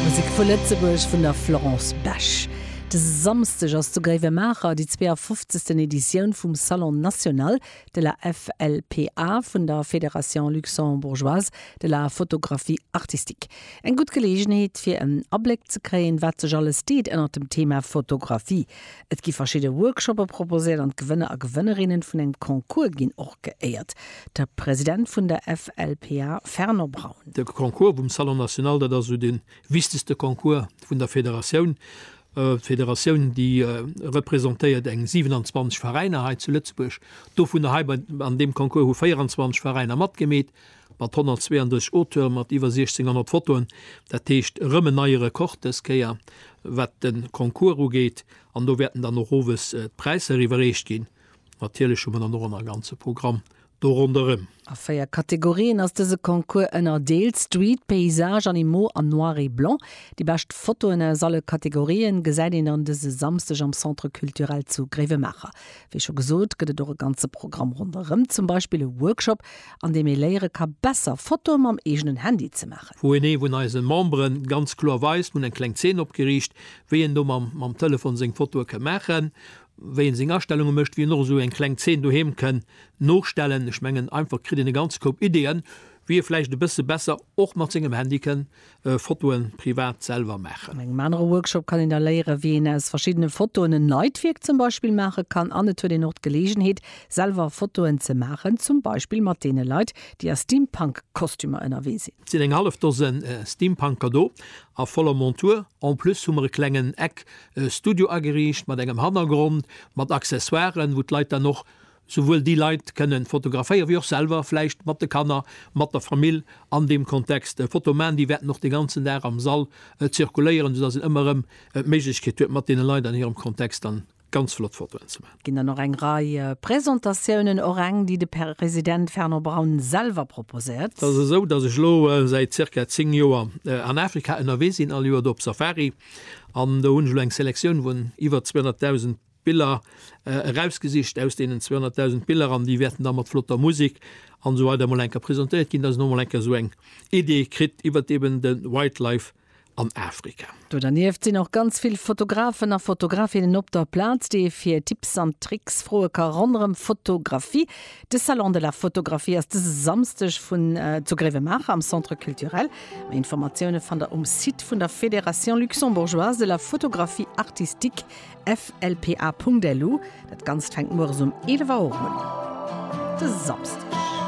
Musek vu Lëtzebuerg vun der Florence Besch. De Samsdeg ass zu Gréiwemaacher déi 52. Editioun vum Salon national de la FLPA vun der Fédération luxembourgeoise de la photographie artistique. Eng gutt Geleegenheet fir en Abléck ze kréien, wat sech alles deet ënnert dem Thema Fotografie. Et gi verschidde Workshoppe proposéiert an d'Gewënner a Gewënnerinnen vun engem Concours ginn och geéiert. De President vun der FLPA Fernand Braun. De Concours vum Salon National, dat ass esou de wichtegste Concours vun der Federatioun. D'Federatioun, déi representéiert eng 27 Veräiner hei zu Lëtzebuerg, dovunner hei bei an deem Concours hu 24 Veräiner matgemeet. Mat 132 Auteure mat iwwer 1600 Fotoen, dat heescht erëm en neie Rekord dës Kéier, wat de Concours ugeet. An do wäerten dann och owes d'Präisser iwwerreecht ginn. Natierlech hu mer dann och ëmmer e ganze Programm do ronderëm. A véier Kategorien ass dëse Concours ënnerdeelt, Street, Paysage, Animaux a Noir et blanc. Déi bescht Fotoen aus alle Kategorien gesäit een dann dëse Samsdeg am Centre Culturel zu Gréiwemaacher. Wéi scho gesot, gëtt et och e ganze Programm ronderëm, zum Beispill e Workshop, an deem ee léiere ka besser Fotoe mam eegenen Handy ze maachen. Wou een ee vun eise Membere ganz kloer weist, mir hunn eng kleng Zeen opgeriicht, wéi een do mam Telefon seng Fotoe ka maachen, wéi een seng Astellunge mécht, wéi een och esou eng kleng Zeen doheem kënn nostellen. Ech mengen einfach kritt een e ganze Koup Ideeën, wéi ee vläicht e bësse besser och mat sengem Handy kënn Fotoen privat selwer maachen. An engem anere Workshop kann een da léieren, wéi een aus verschiddene Fotoen en Leitwierk zum Beispill maache kann. An et huet een och d'Geleegenheet, selwer Fotoen ze maachen, zum Beispill mat deene Leit, déi a Steampunk-Kostümer ënnerwee sinn. Et sinn eng hallef Dosen Steampunker do a voller Montur. En plus hu mer e klengen Eck-Studio ageriicht mat engem Hannergrond, mat Accessoiren, wou d'Leit dann och souwuel déi Leit kënnen fotograféieren, wéi och selwer vläicht mat de Kanner, mat der Famill an deem Kontext e Foto maachen. Déi wäerten och de ganzen Dag am Sall zirkuléieren, soudass een ëmmer erëm d'Méiglechkeet huet, mat deene Leit an hirem Kontext dann ganz flott Fotoen ze maachen. Ginn dann och eng Rei Presentatiounen, och eng, déi de President Fernand Braun selwer proposéiert. Et ass esou, dass ech elo säit zirka zéng Joer an Afrika ënnerwee sinn, all Joer do op Safari. An do hunn ech elo eng Selektioun vun iwwer 200.000 Biller erausgesicht aus deenen 200.000 Biller an déi wäerten da mat flotter Musik an esou weider emol eng Kéier presentéiert ginn, dass een emol eng Kéier esou eng Idee kritt iwwert eben de Wildlife an Afrika. Do dernieft sinn och ganz vill Fotografen a Fotografinnen op der Plaz, déi ee fir Tipps an Tricks froe ka ronderëm Fotografie. De Salon de la Photographie ass dëse Samsdeg vun zu Gréiwemaacher am Centre Culturel. Méi Informatioune fannt der um Site vun der Fédération Luxembourgeoise de la Photographie Artistique, FLPA.lu, dat ganzt fänkt mueres um 11 Auer un. De Samsdeg.